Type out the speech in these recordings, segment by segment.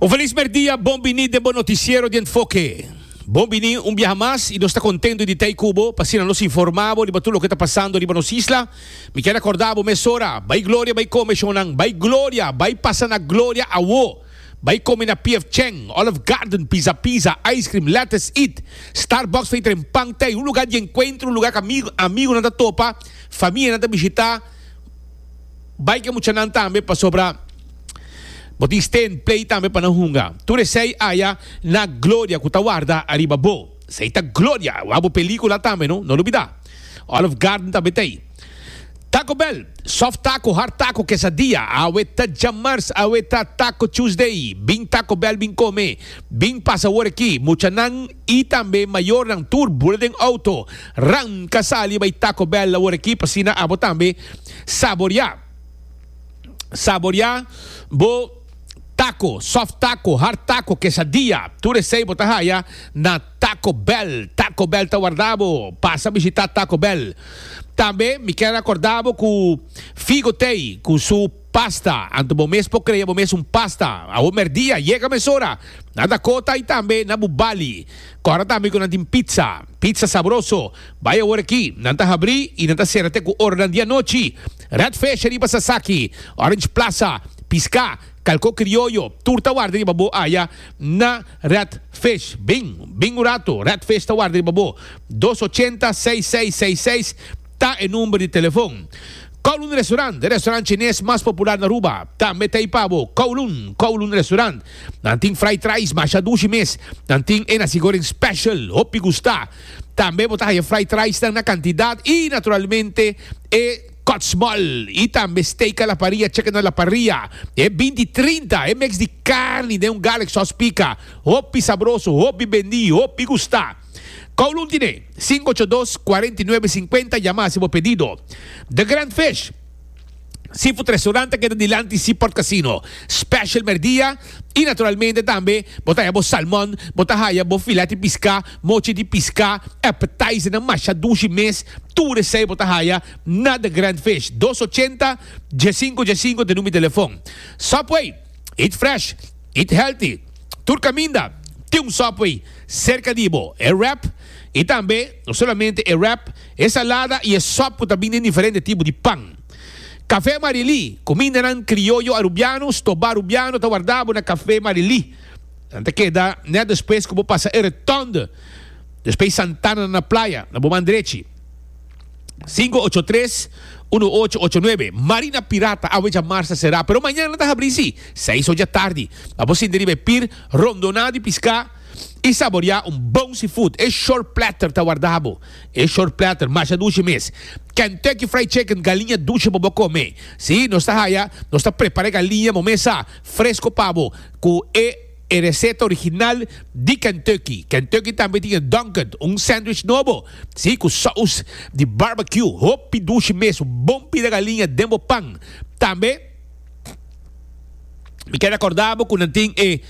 Un felis merdia, bon bini den bo noticiero di Enfoke. Bon bini un biaha mas y nos ta contento di t'ey cu bo, p'asina nos informa bo riba tur loke ta pasando riba nos isla. Mi ker acorda bo mesora, bay gloria bay come shonnan, bay gloria, bay pasa na gloria awo, bay come na PF Chang, Olive Garden, Pizza Pizza, Ice Cream, Lettuce Eat, Starbucks Fey Tren Pan T'ey un lugar di encuentro, un lugar ca amigo, amigonan ta topa, famia nan ta bishita, Bai ke muchanan tambe pasobra bo tin stén plei tambe pa nan hunga. Tur esei aya na gloria ku ta warda ariba bo. Esei ta gloria, wak bo pelíkula tambe no, no lubidá. Olive Garden ta betei. Taco Bell, soft taco, hard taco, quesadilla, awe ta djamars, awe ta Taco Tuesday. Bin Taco Bell bin kome, bin pasa awor aki. Muchanan. y tambe mayornan tur bula den auto ranca sali bay Taco Bell awor aki pasina abo tambe saboria saboria bo taco soft taco hard taco quesadilla tur esey bo ta haya na Taco Bell Taco Bell ta warda bo pasa bishita Taco Bell tambe mi kier acorda bo cu Figo Thee cu su Pasta, anto bo mes por crea bo mes un pasta. Awo merdia, yega mesora. Na Dakota y tambe na bu bali. Cora tambe cu nan tin pizza. Pizza sabroso. Bay awor aki. Nan ta habri y nan ta cera te cu oranan di anochi. Redfish riba Sasaki. Orange Plaza. Pisca. Calco crioyo. Tur ta warda riba bo aya na Redfish. Bin. Bin un rato. Redfish ta warda riba bo. Dos ochenta seis seis seis seis. Ta e number di telefon. Kowloon Restaurant, e restaurant chines mas popular na Aruba. Tambe ta e pabo, Kowloon, Kowloon Restaurant. Nan tin fried rice masha dushi mes. Nan tin e nasi goreng special, hopi gusta. Tambe bo ta haya fried rice nan na cantidad y naturalmente e kòtsmòl y tambe steak a la parrilla, chicken a la parrilla. E binti trinta, e mix di carni den un garlic sauce pica. Hopi sabroso, hopi bendi, hopi gusta. Kowloon Tiné, sinku ocho dos, kuarenta i nuebe, sinkuenta, yama hasi bo pedido. The Grand Fish, seafood restaurant ta keda dilanti Seaport Casino, special merdia i naturalmente tambe bo ta haya bo salmon, bo ta haya bo filet di piská, mochi di piská, appetizernan masha dushi mes, tur esei bo ta haya na The Grand Fish, dos ochenta, dje sinku dje sinku te number di telefon. Subway, eat fresh. Eat Healthy, Tur Caminda, Tin un Subway Cerca di Bo, e wrap, y tambe, no solamente e wrap, e salada y e sop cu ta bini den diferente tipo di pan. Café Marilí, Cumindanan Crioyo Arubiano, Stobá Arubiano ta warda bo na Café Marilí. Nan ta keda net despues cu bo pasa e Rotonde, despues Santana na Playa, na bo man drechi. Sinku ocho tres unu ocho ocho nuebe. Marina Pirata awe dja mar sta será, pero mañana ta habrí sí, seis oja tardi. Pa bo sinti riba e pir rondonao di piská i saboreá un bon seafood, e shore platter ta wardá bo. E shore platter masha dushi mes. Kentucky Fried Chicken, galiña dushi pa bo kome. Sí, nos ta haya, nos ta prepará e galiña momé sa, fresko pa bo, ku e. E reseta original di Kentucky. Kentucky tambe tin e Dunkin, un sandwich nobo, si, cu sous di barbecue, hopi dushi mes, un bon pida galiña den bo pan. Tambe mi keda corda bo cu nan tin e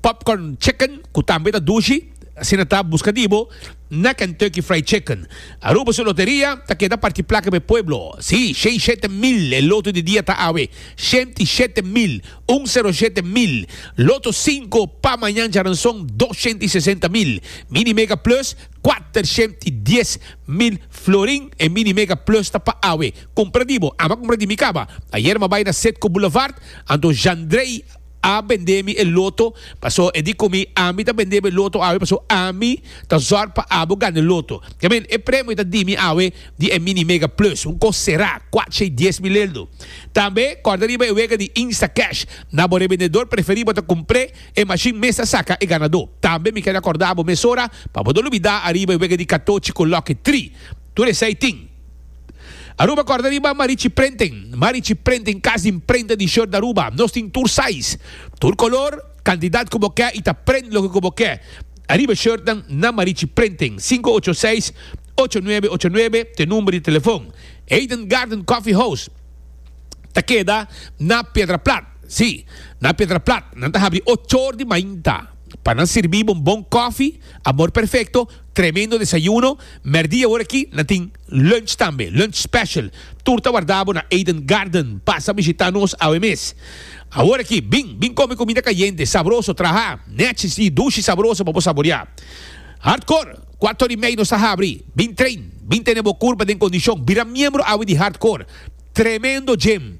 popcorn chicken cu tambe ta dushi, asina ta, busca di bo na Kentucky Fried Chicken. Aruba su loteria ta keda parti placa pa e pueblo, si, shei shete mil e loto di dia ta awe, shenti shete mil. Un sero shete mil. Loto sinku pa mañan djaranson dos shent i sesenta mil. Mini Mega Plus kuater shent i dies mil florin. E Mini Mega Plus ta pa awe. Kumpra di bo. Ama kumpra di mi kaba. Ayer m'a bai na Setco Boulevard, anto Jandrey a bende mi e loto. Paso e di ku mi, Ami ta bende bo e loto awe paso ami ta zòrg pa abo gana e loto. Kiamen, e premio ta di mi awe. di e Mini Mega Plus, un kos será, kuacha i dies mil eldo. Tambe kòrda riba e wega di Instacash. Na bo rebendedor preferí bo ta kumpr'é, e mashin mes ta saka e ganadó. Tambe mi keda kòrda bo mesora pa bo no lubidá ariba e wega di katochi ku lòki tri. Tur esei tin. Aruba kòrda riba Marichi Printing. Marichi Printing kas di mprenta di short Aruba. Nos tin tur size, tur kolor, kantidat ku bo ke i ta print loke ku bo ke. Ariba shirtnan na Marichi Printing, sinku ocho seis, ocho nuebe ocho nuebe ta e number di telefon. Eden Garden Coffee House ta keda na Piedraplat, si, na Piedraplat. Nan ta habri ocho or di mainta pa nan sirbi bo un bon kòfi, amor perfekto, tremendo desayuno. Mèrdia awor aki nan tin lunch tambe, lunch special. Tur ta warda bo na Eden Garden. Pasa bishita nos awe mes. Awor aki, bin, bin kome kumida kayente, sabroso, traha, nèchis i dushi sabroso pa bo saborea. Hardcore, kuator di mei nos ta habri. Bin train, bin tene bo kurpa den kondishon. Bira miembro awe di Hardcore. Tremendo gym.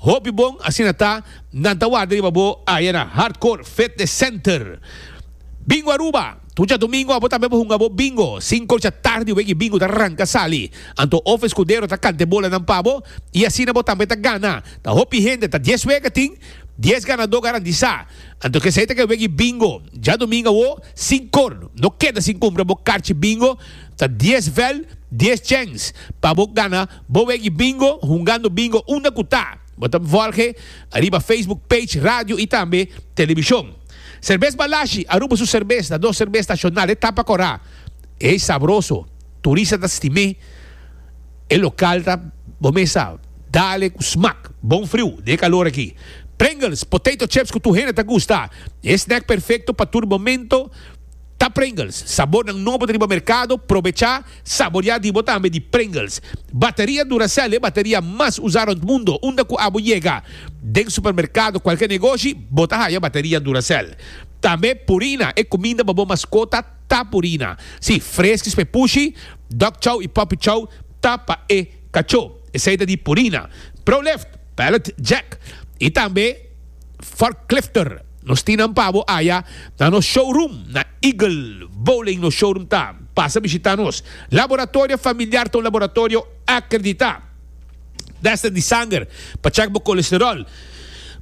Hopi bon, asina ta, nan ta warda riba bo aya na Hardcore Fitness Center. Bingo Aruba! Tuja domingo abo tambe bo hunga bo bingo. Sinko dja tardi weki bingo ta ranka sali. Anto of eskudero ta kante bolanan pa bo i asina bo tambe ta gana. Ta hopi hende, ta dies weka tin dies ganadó garantisá. Anto kesei ta ke weki bingo. Dja domingo awo sinkor no keda sin kumpra bo karchi bingo. Ta dies vel, dies chèns pa bo gana bo weki bingo hungando bingo unda ku ta. Bo ta vòlge ariba Facebook page radio i tambe telebishon. Serbes Balashi, Aruba su serbes ta nos serbes nacional, e tapa cora, e sabroso, turista ta stim'e, e local ta bo mesa, dale cu smaak, bon friu n'e calor aki. Pringles, potato chips cu tur hende ta gusta, e snack perfecto pa tur momento, Ta Pringles, sabornan nobo riba merkado, probecha saborea di bo tambe di Pringles. Bateria Duracell e bateria mas usa rond mundo, unda ku abo yega den supermerkado kualke negoshi bo ta haya bateria Duracell. Tambe Purina e kuminda pa bo maskota ta Purina. Si, Friskies p'e pushi, Dog Chow i Puppy Chow ta pa e kachó, esei ta di Purina. Proleft, Pallet Jack i tambe. forklifter nos tin nan pabo aya na nos showroom na Eagle Bowling nos showroom ta pasa bishita nos laboratorio familiar ta un laboratorio akredita tester di sanger pa check bo kolesterol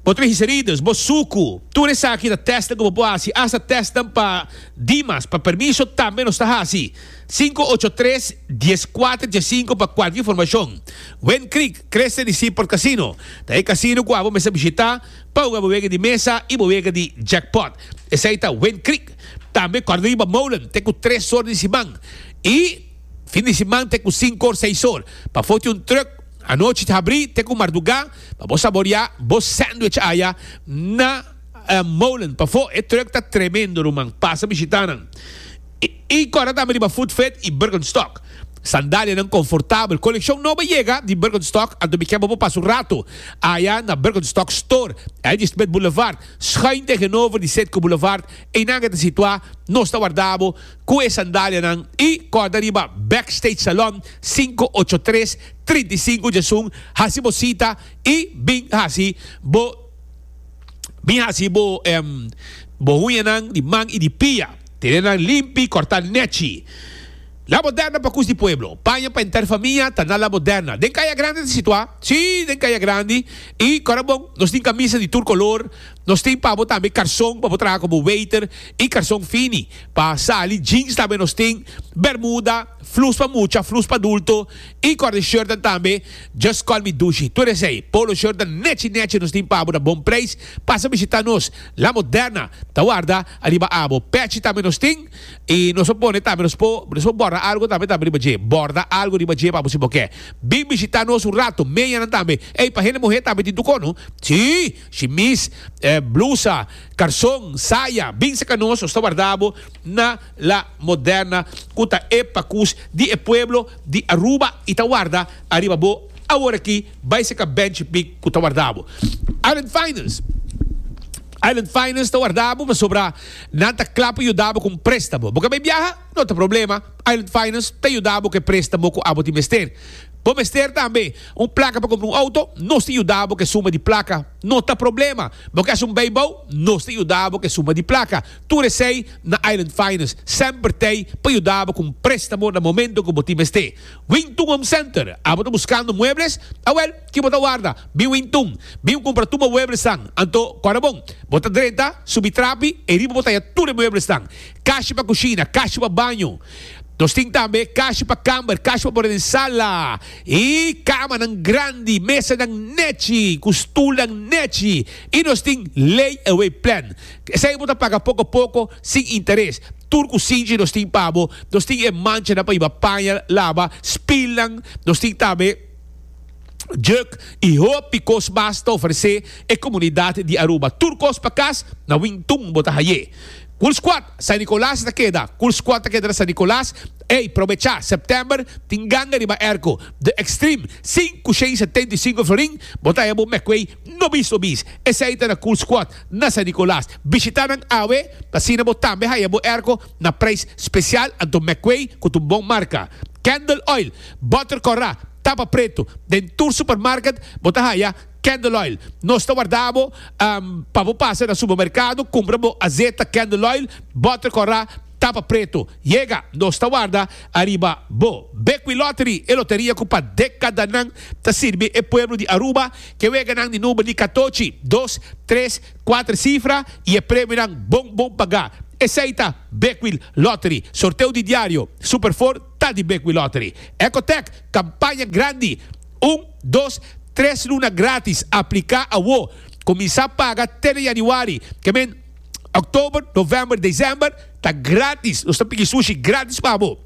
bo trigicerides bo suku tur esaki ta tester ku bo por hasi asta test nan pa dimas pa permiso tambe nos ta hasi. Sinku ocho tres dies kuater dje sinku pa kualke informashon. Wind Creek Crescent di Seaport Casino ta e kasino ku abo mester bishitá pa uga bo wega di mesa i bo wega di jackpot. Esei ta Wind Creek. Tambe kòrda riba Molen te ku tres or di siman i fin di siman te ku sinku or seis or. Pafó tin un trùk anochi ta habrí te ku mardugá pa bo saboriá bo sandwich aya na Molen. Pafó e trùk ta tremendo ruman. Pasa bishitá nan. I kòrda tambe riba Footfit i Birkenstock. Sandalianan konfortabel. Kolekshon nobo yega di Birkenstock, anto mi kèn bo pa pasa un ratu aya na Birkenstock Store. Ey di Smith Boulevard, schuin tegenover di Citgo Boulevard. Einan ke ta situá. Nos ta warda bo ku e sandalianan. I kòrda riba Backstage Salon, sinku ocho tres, trinta i sinku Jasun. Hasi bo sita i bin hasi bo bin hasi bo bo huñanan di man i di pia. Tene nan limpi, corta nechi. La Moderna pa cus di pueblo. Paña pa enter famia ta na La Moderna. Den caya grandi ta situa? Si, den caya grandi. Y cora bon, nos tin camisa di tur color. Nos tin pa bo tambe carson pa bo traha como waiter y carson fini. Pa sali, jeans tambe nos tin, bermuda, flus pa mucha, flus pa adulto y cor de shirtnan tambe, just call me Dushi. Tur esey, polo shirtnan nechi nechi nos tin pa bo na bon prijs. Pasa bishita nos. La Moderna ta warda. Ariba abo, pechi tambe nos tin, i nos a pone tambe nos po, nos por borda algo tambe tambe riba dje. Borda algo riba dje pa bo si bo ke. Bin bishita nos un rato, meyanan tambe. Ey, pa hende muhe tambe tin tuko, no? Sí! Shimis, blusa, karson, saya, bin saka nos, nos ta warda abo na La Moderna ku ta e pakus di e pueblo di Aruba i ta warda ariba bo aworakí bai saka benchi pik ku ta warda abo. Arendt Finance. Island Finance ta warda bo pasobra nan ta kla pa yuda bo ku un préstamo. Bo ka bai biaha? No ta problema, Island Finance ta yuda bo ku e préstamo ku abo tin mester. Bo mester tambe un plaka pa kumpra un outo? Nos ta yuda bo ku e suma di plaka. No ta problema, bo ke hashi un beibou? Nos ta yuda bo ku e suma di plaka. Tur esei na Island Finance. Semper tei pa yuda bo ku un préstamo na momento ku bo tin mester. Wington Home Center, Abo ta buskando muebles? Awèl, Ki bo ta warda? Bin win tun. Bin kumpra tur mueblesnan. Anto, kòrda bon. Bo ta drenta, subi trapi, e riba bo ta haya tur e mueblesnan. Kashi pa kushina, kashi pa baño. Nos tin tambe kashi pa kamber, kashi pa bora den sala. I kamanan grandi, mesanan nèchi, ku stulnan nèchi. I nos tin lay-away plan. Esei bo ta paga poko poko, sin interes. Tur kusinchi nos tin pa bo. Nos tin e manchanan pa yiba paña laba, spilnan. Nos tin tambe. juk i hopi kos mas ta ofresé e komunidat di Aruba. Tur kos pa kas, na Wingtun bo ta haié. Kulskuad, San Nikolas ta keda. Kulskuad ta keda na San Nikolas. Ey, probechá, September tin ganga riba Erko. The Extreme, sin ku shei setenta i sinku florin, bo ta haya bo mekuey no bis no bis. Esei ta na Kulskuad, na San Nikolas. Bishitá nan awe, asina bo tambe haya bo Erko na preis spesial, anto mekuey ku tun bon marka. Candle Oil. Butter Corra, tapa pretu, den tur supermarket bo ta haya Candle Oil. Nos ta warda bo pa bo pasa na supermerkado kumpra bo azeta Candle Oil, Butter Corra, tapa pretu. Yega, nos ta warda ariba bo. Bekwin Lottery, e loteria ku pa dekadanan ta sirbi e pueblo di Aruba, ke weganan di number di katochi, dos, tres, kuater sifra i e premionan bon bon pagá. Esei ta Bekwin Lottery. Sorteo di diario, Super Four. ta di Bekwey Lottery. Ecotech, Kampaña Grandi, Un, dos, tres luna gratis, apliká awo, kuminsá paga te na yanüari, ke men, òktober, novèmber, desèmber, ta gratis, nos ta piki sushi gratis pa bo.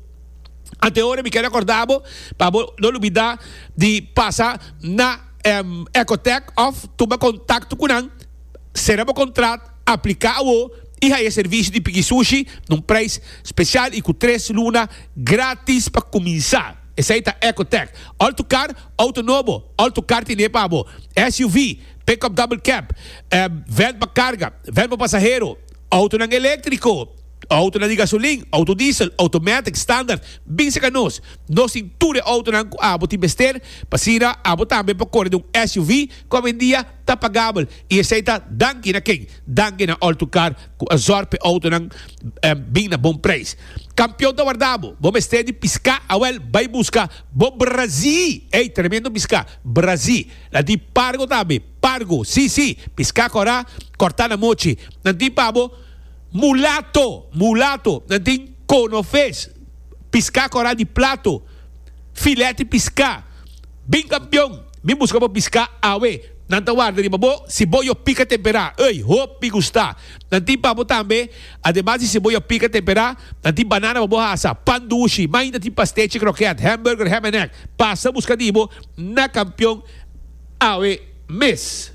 Anteora mi ke rekordá bo pa bo no lubidá di pasa na Ecotech òf tuma kontakto ku nan. sera bo kontrat, apliká awo i haya e servisio di Piki Sushi na un preis spesial i ku tres luna grátis pa kuminsá. Esei ta Ecotec, Alto Kar, Outo Nobo, Alto Kar Tiné pa Bo, SUV, Pickup Double Cab, Vèn pa Karga, Vèn pa Pasahero, Outonan Eléktriko, Outonan di Gasolin, Outo Diesel, Automatic, Standard, bin serka nos, nos tin tur e outonan ku abo tin mester, pa asina abo tambe por kore den un SUV ku a wendia. ta pagabel y esey ta danki na ken? Danki na Alltocar cu a zorg p'e autonan bin na bon prijs. Campeon ta warda bo, bo mester di pisca awel bay busca bo brazi, ey tremendo pisca, brazi, la di pargo tambe, pargo, si si, pisca cora, corta na mochi, nan tin pa bo mulato, mulato, nan tin conoves, pisca cora di plato, filet di pisca. Bin kampion, mi buska bo piská awe. Nan ta warda riba bo siboyo pika temperá, ey, hopi gustá. Nan tin pa bo tambe, ademas di siboyo pika temperá, nan tin banana pa bo hasa, pan dushi, ma ainda tin pastechi krokèt, hamburger, ham en egg. Pasa buska di bo na kampion awe mes.